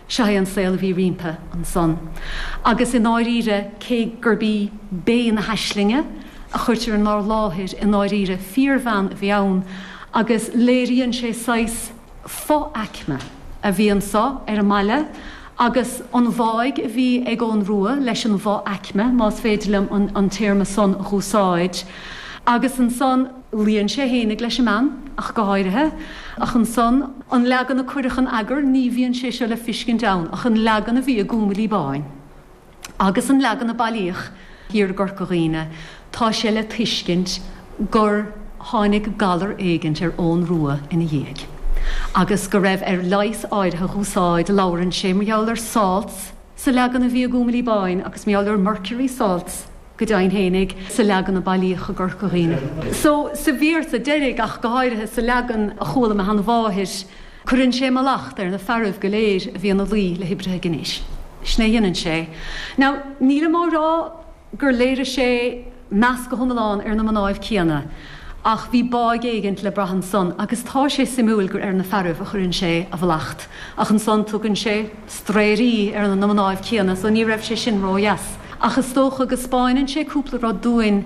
Seo é an saol a bhí roimpi ansan. Agus i ndáiríre, cé gurb í Bé na hAislinge a chuirtear inár láthair, i ndáiríre fíorbhean a bhí ann agus léiríonn sé saghas fo-aicme a bhí anso ar an mbaile agus an bháidh a bhí ag Eoghan Rua leis an bhfo-aicme, más féidir liom an téarma san a úsáid. Agus ansan. Luíonn sé fhéinig leis an mbean, ach go háirithe, ach ansan, an leagan a cuireadh in eagar ní bhíonn sé seo le fiscint ann ach an leagan a bhí i gCúngailí Báin agus an leagan a bailíodh thiar i gCorca Dhuibhne tá sé le tuiscint gur tháinig galar éigint ar Eoghan Rua ina dhiaidh agus go raibh air leigheas áirithe dh'úsáid Labhrann sé mar gheall ar salts sa leagan a bhí i gCúngailí Báin agus mar gheall ar mercury salts go deimhin fhéinig sa leagan a bailíodh i gCorca Dhuibhne. So sa véarsa deiridh ach go háirithe, sa leagan a chuala mo sheanmháthair, cuireann sé mallacht ar na fearaibh go léir a bhí ina luí le hoibrithe gnéis. Sin a dheineann sé. Now nílim á rá gur léirigh sé meas go hiomlán ar na mnáibh céanna ach bhí báidh éigint le brath ansan agus tá sé suimiúil gur ar na fearaibh a chuireann sé a mhallacht ach ansan tugann sé straeirí ar na mnáibh céanna so ní raibh sé sin ró dheas ach is dócha go 'spáineann sé cúpla rud dúinn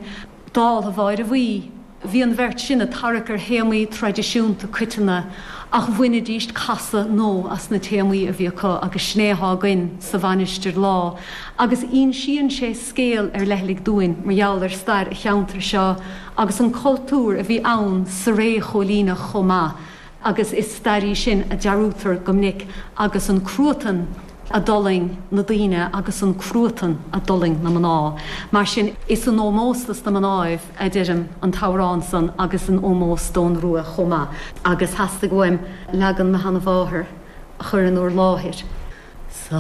dáltha Mháire Bhuí. Bhí an bheirt sin a' tarrac ar théamaí traidisiúnta coiteanna ach bhainidíst casadh nó as na téamaí a bhí acu agus sin é athá againn sa Mhainistir lá agus ínsíonn sé scéal ar leithligh dúinn mar gheall ar stair a' cheantair seo agus an cultúr a bhí ann sa ré chóilíneach chomh maith. agus is stair í sin a dearúdtar go minic agus an cruatan a d'fhulaing na daoine agus an cruatan a d'fhulaing na mná. Mar sin, is in ómós dos na mnáibh a deirim an t-amhrán san agus in ómós d'Eoghan Rua chomh maith, agus theastaigh uaim leagan mo sheana-mháthar a chur in úr láthair sa.